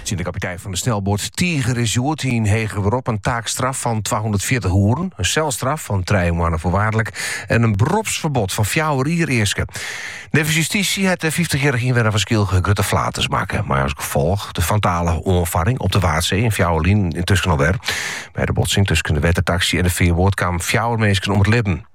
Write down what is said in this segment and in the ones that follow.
Tsjin de kapitein fan de snelboat Tiger is hjoed yn heger berop in taakstraf fan 240 oeren, in selstraf fan trije moanne foarwaardlik en in beropsferbod fan fjouwer jier easke. Neffens justysje hat de 50-jarrige ynwenner fan Skylge grutte flaters makke, mei as gefolch de fatale oanfarring op de Waadsee in fjouwer jier lyn no alwer. By de botsing tusken de wettertaksy en de fearboat kamen fjouwer minsken om it libben.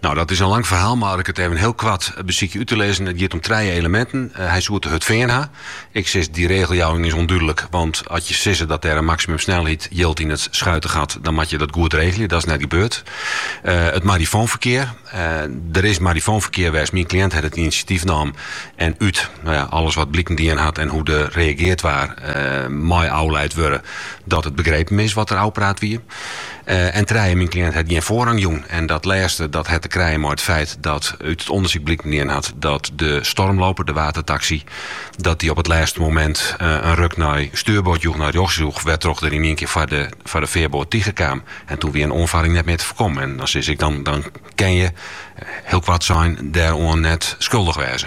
Nou, dat is in lang ferhaal, mar ik sil it even hiel koart besykje út te lizzen. It giet om trije eleminten. Eh, hy soe te hurd fearn ha. Ik sis, dy regeljouwing is ûndúdlik, want as je sizze dat der in maksimumsnelheid jild yn it Schuitengat, dan moat je dat goed regelje. Dat is net gebeurd. Eh, it marifoonferkear. Eh, der is marifoonferkear west. Myn kliënt hat it inisjatyf naam en út no ja, alles wat bliken dien hat en hoe't der reagearre waar, eh, mei ôflaat wurde dat it begrepen is wat der ôfpraat wie. En trije myn kliënt hat gjin foarrang jûn. En dat lêste dat hat te krijen mei it feit dat út it ûndersyk bliken dien hat dat de Stormloper, de wettertaksy, dat dy op it lêste momint in ruk nei stjoerboard joech, nei rjochts joech, wêrtroch't er yn ien kear foar de foar de fearboat telâne kaam. En doe wie in oanfarring net mear te foarkommen. En dan sis ik, dan dan kinne je, hiel koart sein, dêroan net skuldich wêze.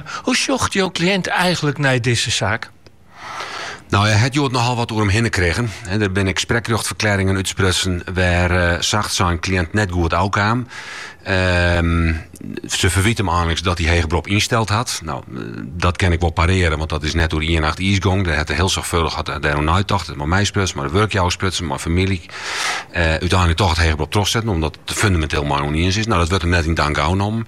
Hoe sjocht jo kliïnt eigenlik nei dizze saak? Nou, hy hat hjoed nochal wat oer him hinne krigen. Der binne ek sprekrjochtferklearringen útsprutsen wêr eh, sacht sein kliïnt net goed ôfkaam. Ehm, se ferwyt him einliks dat hy heger berop ynsteld hat. Nou, eh, dat kin ik wol parearen, want dat is net oer ien nacht iis gong. Der hat er hiel soarchfâldich hat er dêroer neitocht. Hat mei my sprutsen, mei de wurkjouwer sprutsen, mei famylje. Eh, úteinlik toch it heger berop trochsetten, omdat er it der fundamenteel mei ûniens is. Nou, dat wurdt him net yn dank ôfnommen.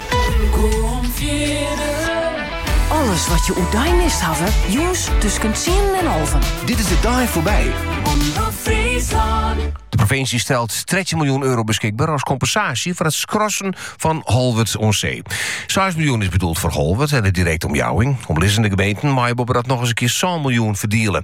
Alles wat je oerdeis mist hawwe, jûns tusken tsienen en alven. Dit is de dei foarby. De provinsje stelt 13 miljoen euro beskikber as kompensaasje foar it skrassen fan Holwerd aan Zee. 6 miljoen is bedoeld foar Holwert en de direkte omjouwing. Omlizzende gemeenten meie boppedat noch ris in kear 7 miljoen ferdiele.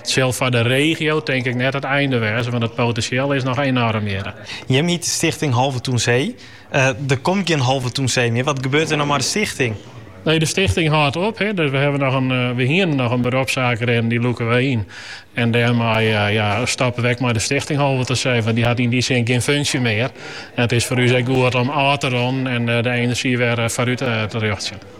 It sil foar de regio tink ik net it einde wêze, want it potinsjeel is noch enoarm hjir. Jim hjitte stichting Holwerd aan Zee. Der komt gjin Holwerd aan Zee mear. Wat gebeurt der no mei de stichting? Nee, de stichting hâldt op. We hiene noch in beropssaak rinnen, dy lûke wy yn. En dêrmei stoppe we ek mei de stichting Holwerd aan Zee, want dy hat yn dy sin gjin funksje mear. It is foar ús ek goed om ôf te ronnen en de enerzjy wer foarút te rjochtsjen.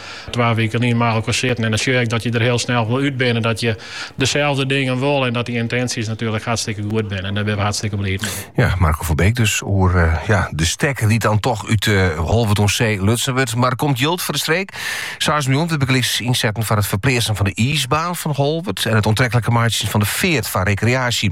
Twa wiken lyn mei elkoar sitten en dan sjoch je ek dat je der hiel snel wol út binne. Dat je deselde dingen wolle en dat dy yntinsjes natuerlik hartstikke goed binne. En dêr binne we hartstikke bliid mee. Ja, Marco Verbeek dus oer uh, ja, de stekker dy't dan toch út uh, eh, Holwerd aan Zee lutsen wurdt. Mar der komt jild foar de streek. 6 miljoen wurdt bygelyks ynsetten foar it ferpleatsen fan de iisbaan fan Holwert en it oantrekliker meitsjen fan de feart foar rekreaasje.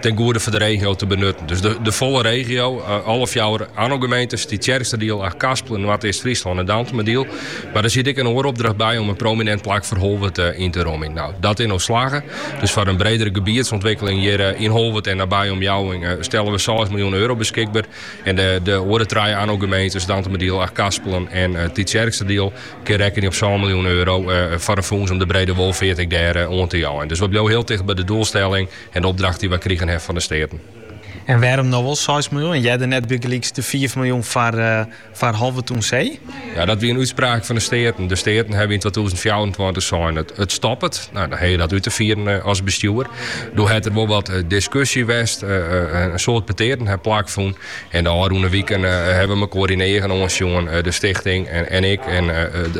ten goede foar de regio te benutten. Dus de, de folle regio, eh, alle fjouwer Anno-gemeentes, Tytsjerksteradiel, Achtkarspelen, Noardeast-Fryslân en Dantumadiel. Mar der siet ek in oare opdracht by om in prominint plak foar Holwert eh, yn te romjen. No, dat is ús slagge. Dus foar in bredere gebiedsûntwikkeling hjir eh, yn Holwert en nabije omjouwing eh, stelle we 6 miljoen euro beskikber. En de, de oare trije Anno-gemeentes, Dantumadiel, Achtkarspelen en eh, Tytsjerksteradiel, Kin rekkenje op sân miljoen euro foar in fûns om de brede wolfeart ek dêr oan te jeien. Dus we bliuwe hiel ticht by de doelstelling en de opdracht dy't we krigen ha fan de Steaten. En wêrom no wol seis miljoen en earder net bygelyks de fiif miljoen foar Holwert oan See? Ja, dat wie in útspraak fan de Steaten. De Steaten hawwe yn twatûzen fjouwerentweintich sein, it stoppet. Nou, dan ha je dat út te fieren as bestjoer. Doe hat der wol wat diskusje west. In soad petearten ha plakfûn. En de ôfrûne wiken ha we mekoar yn 'e eagen oansjoen, de stichting en ik. En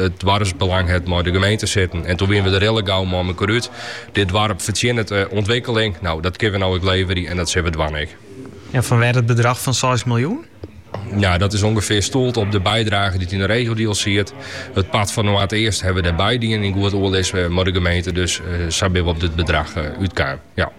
it doarpsbelang hat mei de gemeente sitten. En doe wiene we der hiele gau mei mekoar út. Dit doarp fertsjinnet ûntwikkeling. No, dat kinne we no ek leverje en dat sille we dwaan ek. En fanwêr it bedrach fan seis miljoen? Ja, dat is ûngefear stoeld op de bydrage dy't yn 'e regiodeal siet. It part fan Noardeast ha we der by dien yn goed oerlis mei de gemeente. Dus sa binne we op dit bedrach útkaam. Ja.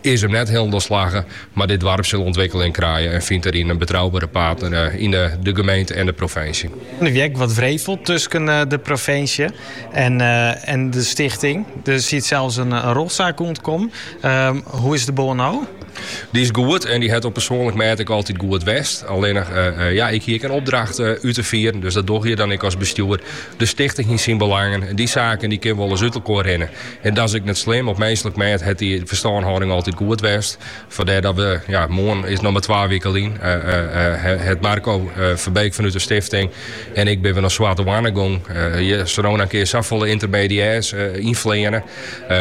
is him net hielendal slagge, mar dit doarp sil ûntwikkeling krije en fynt dêryn in betroubere partner yn de gemeente en de provinsje. Der wie ek wat wrevel tusken de provinsje en de stichting. Der siet sels in rjochtsaak oan te kommen. Hoe is de bân no? Dy is goed en dy hat op persoanlik mêd ek altyd goed west. Allinnich, ja, ik hie ek in opdracht út te fieren, dus dat dogge je dan ek as bestjoer. De stichting hie syn belangen en dy saken dy kinne wolris út elkoar rinne. En dat is ek net slim. Op minslik mêd hat dy ferstânhâlding altyd goed west. Fandêr dat we, ja, moarn is noch mar twa wike lyn, hat Marco Verbeek fanút de stifting en ik binne we nei Swarte Hoanne gong. Je soene noch in kear safolle yntermediêrs ynfleane.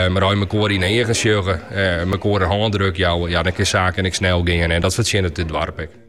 Mar as je mekoar yn 'e eagen sjogge, mekoar in hândruk jouwe, ja, dan kin saken ek snel gean en dat fertsjinnet dit doarp ek.